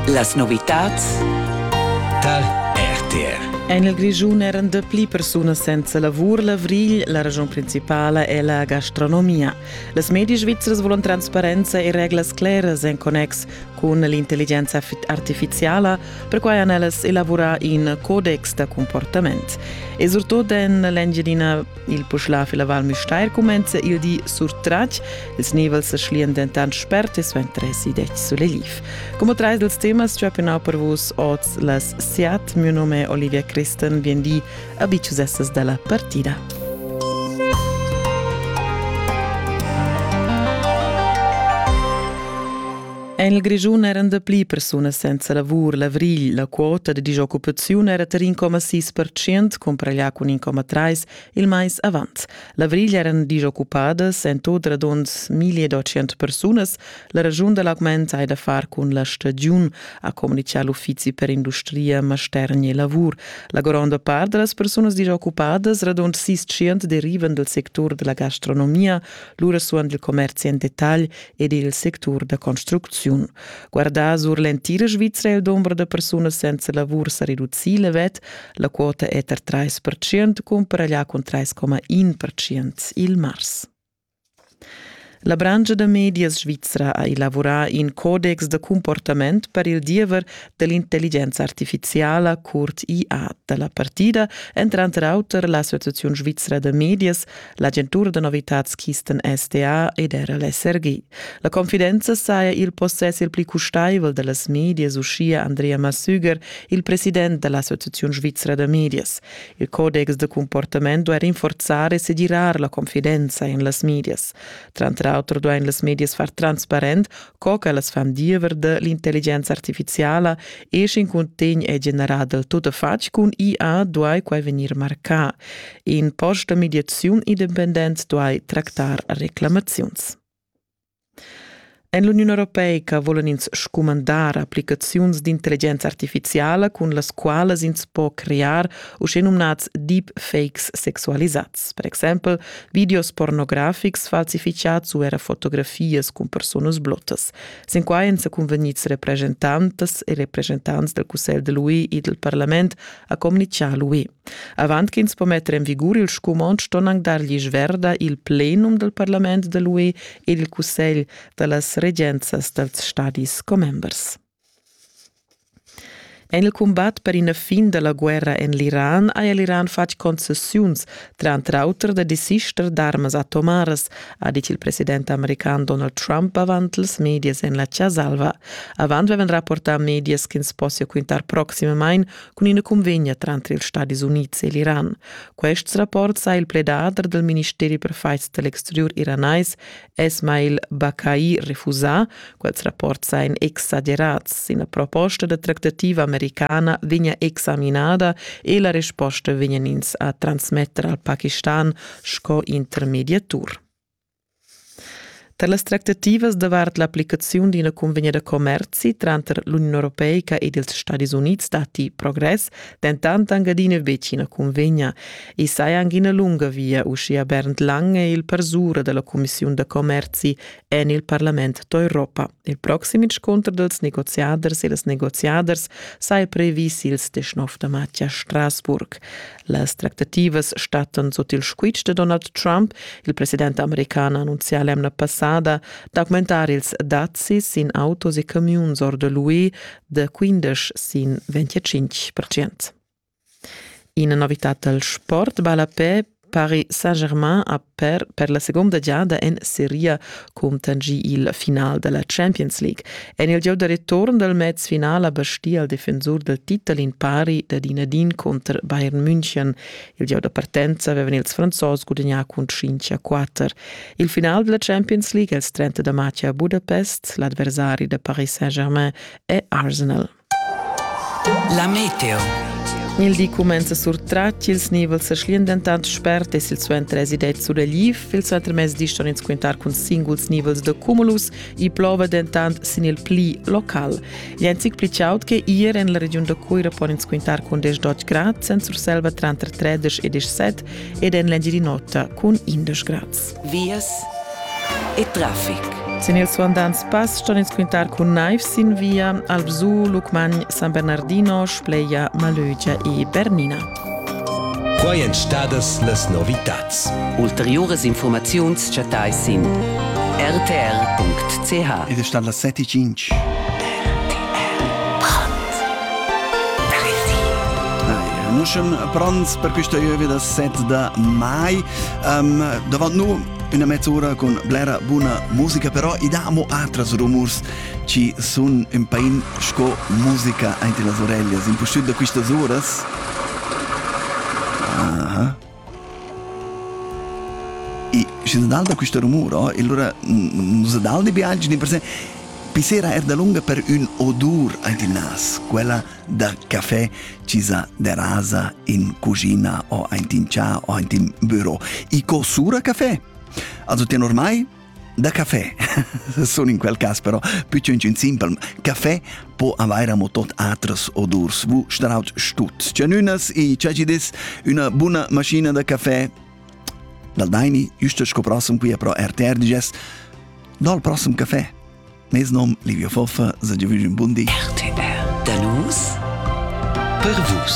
Las novitads tar RTR. En il Grischun eran dapli persunas senza lavur. L'avrigl, la regiun principala, è la gastronomia. Las media svizras volan transparenza e reglas claras en connex cun l'intelligenza artificiala. Perquai han ellas elaborà in codex da comportament. E surtut en l'Engiadina Il puschlav e la Val Müstair cumenza il di surtratg, ils nivels sa schlian dentant spert e suenter èsi detg suleliv. Come trais dels temas già penau per vus oz las siat, mio nome è Olivia Christen, bien di, abicius essas dalla partida. En il Grischun eran dapli persunas senza lavur. L'avrigl, la quota da disoccupaziun era tar 1,6 percent, cumparaglià cun 1,3 il mais avant. L'avrigl eran disoccupadas en tot radund 1200 persunas. La ragiun da l'augment hai da far cun la stagiun, ha communitgà l'uffizi per industria, mastergn e lavur. La gronda part da las persunas disoccupadas, radund 600, derivan dal sectur da la gastronomia. Lura suond il commerzi en detagl ed il sectur da construcziun. Guardà sur l'entira Svizra è il dumber da persunas senza lavur sa reducì levet, la quota è tar 3% cumpara là cun 3,1% il mars. La brangia da medias svizra ha elavorà in codex da comportament per il diever dell'intelligenza artificiala curt IA da la partida, entranter auter l'Associazione Svizzera da Medias, l'agentura da novitads Kisten SDA ed era l'SRG. La confidenza saja il possess il pli custaivel da las medias, uschia Andrea Massüger, il president da l'Associazione Svizzera da Medias. Il codex de comportament duai rinforzare e segirar la confidenza en las medias. Tranter auter duain las medias far transparent co ch'ellas fan diever da l'intelligenza artificiala e sch'in cuntegn è generà dal tuttafatg cun IA duai quai vegnir marcà. In post da mediaziun independent duai tractar reclamaziuns. En l'Uniun Europeica volan ins scumandar applicaziuns d'intelligenza artificiala cun las qualas ins po crear uschenumnads deepfakes sexualizads. Per exempel Videos pornografics falsifichats u era fotografias cun persunas blottas. Sin quai èn sa cunvegnids represchentantas e represchentants dal Cussegl de l'UE e dal parlament a communicar l'UE. Avant ch'ins po metter en vigur il scumond ston anc dar l'isch verda il plenum dal parlament de l'UE ed il Cussegl da las regenzas dals stadis commembers. En il cumbat per ina fin da la guerra en l'Iran haja l'Iran fatg concessiuns, tranter auter da desister d'armas atomaras, ha ditg il president american Donald Trump avant las medias en la Chazalva. Avant avevan rapportà medias ch'ins possia quintar proximamain cun ina cunvegna tranter ils Stadis Unids e l'Iran. Quests rapports ha il pledader dal ministeri per faids da l'exteriur iranais es mai il BCI refusà. Quels rapports sain exagerats. Ina proposta da tractativa americana vegna examinada e la resposta vegnan ins a transmetter al Pakistan sco intermediatur. Tar las tractativas davart l'applicaziun d'ina cunvegna da commerzi tranter l'Unione Europeica ed ils Stati Unids datti progress, dentant anc adina betg ina cunvegna. I saja anc ina lunga via, uschia Bernd Lange, il persura da la Cumissiun da commerzi en il parlament d'Europa. Il proxim inscunter dals negoziaders e las negoziaders saja previs ils deschnov da mattia Strasburg. Las tractativas stattan sut il squitsch de Donald Trump. Il president american annunzià l'emna passada d'augmentar ils dazis sin autos e camiuns or de l'UE de 15 sin 25 percent. Ina novitad dal sport ballapè Paris Saint-Germain ha per, per la segunda giada en seria cuntangì il final da la Champions League. En il gieu da return dal mez final ha bastì al defensur dal titel in pari dad in ad in cunter Bayern München. Il gieu da partenza avevan ils Franzos gudagnà cun 5 a 4. Il final della Champions League è il 30 da matg a Budapest. L'adversari da Paris Saint-Germain è Arsenal. La meteo. Il di cumenza surtrat ils nivels sa schlian dentant spert e silsuenter es id sulegliv. Il suentermezdi ston ins quintar cun singuls nivels da cumulus, i plova dentant sin il pli local. E ein zic pli chaud che ier en la regiun da Cuira pon ins quintar cun 10 grad, sen Surselva tranter 13 e 17 ed en l'Engiadin'Ota cun 11 grad. vias e trafic. Sin ils suandants pass ston ins quintar cun naiv sin via Alvsu, Lucmagn, San Bernardino, Spleia, Malögia e Bernina. Quai èn stadas las novitads. Ulteriuras informaziuns chattais sin rtr.ch. Ed è stata las 7.05. Uschen Brands per questa övia da 7 da mai. Um, davant nu üna mezz'ura cun blera buna musica, però i dà amo atras rumurs chi sun ün pain sco musica aint in las ureglias, impustüt da quistas uras. Aha. E schi se dal da quista rumur, oh, allora nu se dal di bianchi in per se, pissera er da lunga per ün odur aint in nas, quella da café ci sa derasa in cucina o in cià o in büro. I co sura café? Also ten ormai da café. Sun in quel cas però più cin simpel. Café po avair amo tot atras odurs. Vu straut stut. Cianünas i cegidis una buna maschina da café dal daini, juste sco prossem qui a pro RTR diges dal prossem café. Mes nom Livio Foffa se giovüg ün bun di. RTR. Da nus per vus.